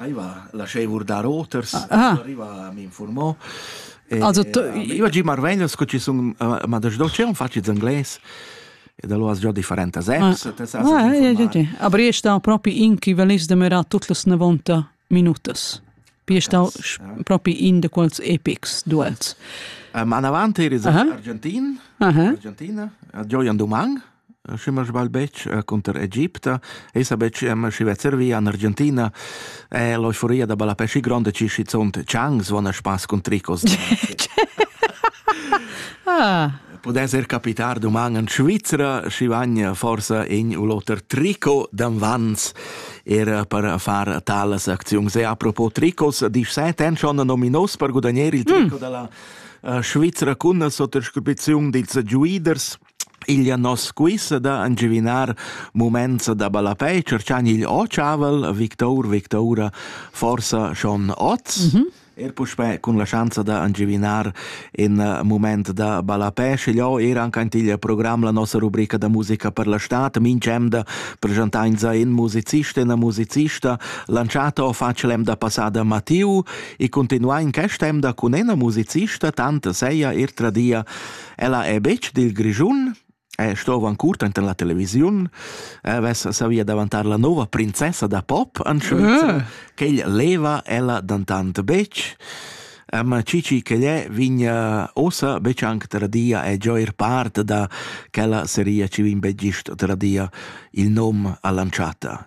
Ei va, laschei vurdar oters, ah. arriva a mi informò. E, also, tu... Io gi marveglia, sco ci sun madasdocem, faci zangles. E da lo as già differentes apps. Ah, ja, ja, ja. Aber ich sta propi in chivalis de merar tutte le 90 minutas. Pi sta yes, ja. propi in de quels epics duels. Um, ehm, avanti is uh -huh. Argentin, uh -huh. Argentina, a Gioian Dumang. Schi m'ha sbagl betg cunter Egipta, ei sa betg schi vezzer via in Argentina. E l'euforia da ballapè schi gronda chi schizunt Changs van a spass cun tricos. Ah. Pudess er capitar duman in Svizra, schi vagn forsa in u l'oter trico d'anvans er per far talas acziuns. E apropos tricos, disch set en schon nominos per gudagner il trico mm. della uh, Svizra cun la sottoscripziun dils Giuiders. Igl nos squissa da angiuvinar muments da ballapei tscherchan igl o tschavel, Victour, Victoura, forsa schon oz. Er puspè cun la schanza da angiuvinar in eh, mument da ballapei, sche jau era anche in igl program la nossa rubrica da musica per la stat, mintg'emda presentainsa in musicist e una musicista, lanciata o faccia l'emda passada Mattiu e continuà in quest'emda cun ena musicista, tant seia er tradia Ella è betg dil Grischun, e stovan curt enten la televisiun avess savia davantar la nova princessa da pop an Svizra, quegl leva ella dantant betg. Eh, ma Cici Cheglie vigna ossa betg anc tradia e giò ir part da chella seria ci vin be gist tradia il nom all'anchata.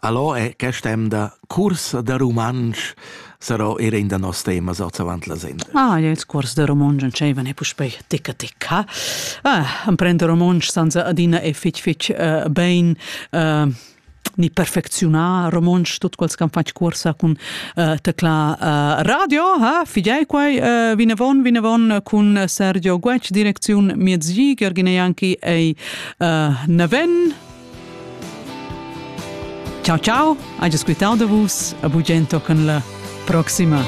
Allò è quest'emda cursa da rumantsch sarò era in da nos temas ozavant la senda. Ah, ja, ils cuors da romontsch dicevano e puspei ticca ticca. Ah, emprender romontsch senza adina è fitg fitg uh, bein. Uh, ni perfecziunar romontsch, tut quels che hanno fatto corsa con uh, tecla uh, radio, eh? fidei quai, uh, vinavon, vinavon con Sergio Guec, direzione Miezgi, Gergine Janki e uh, Naven. Ciao ciao, hai già ascoltau da vus, a bugen tocan la proxima.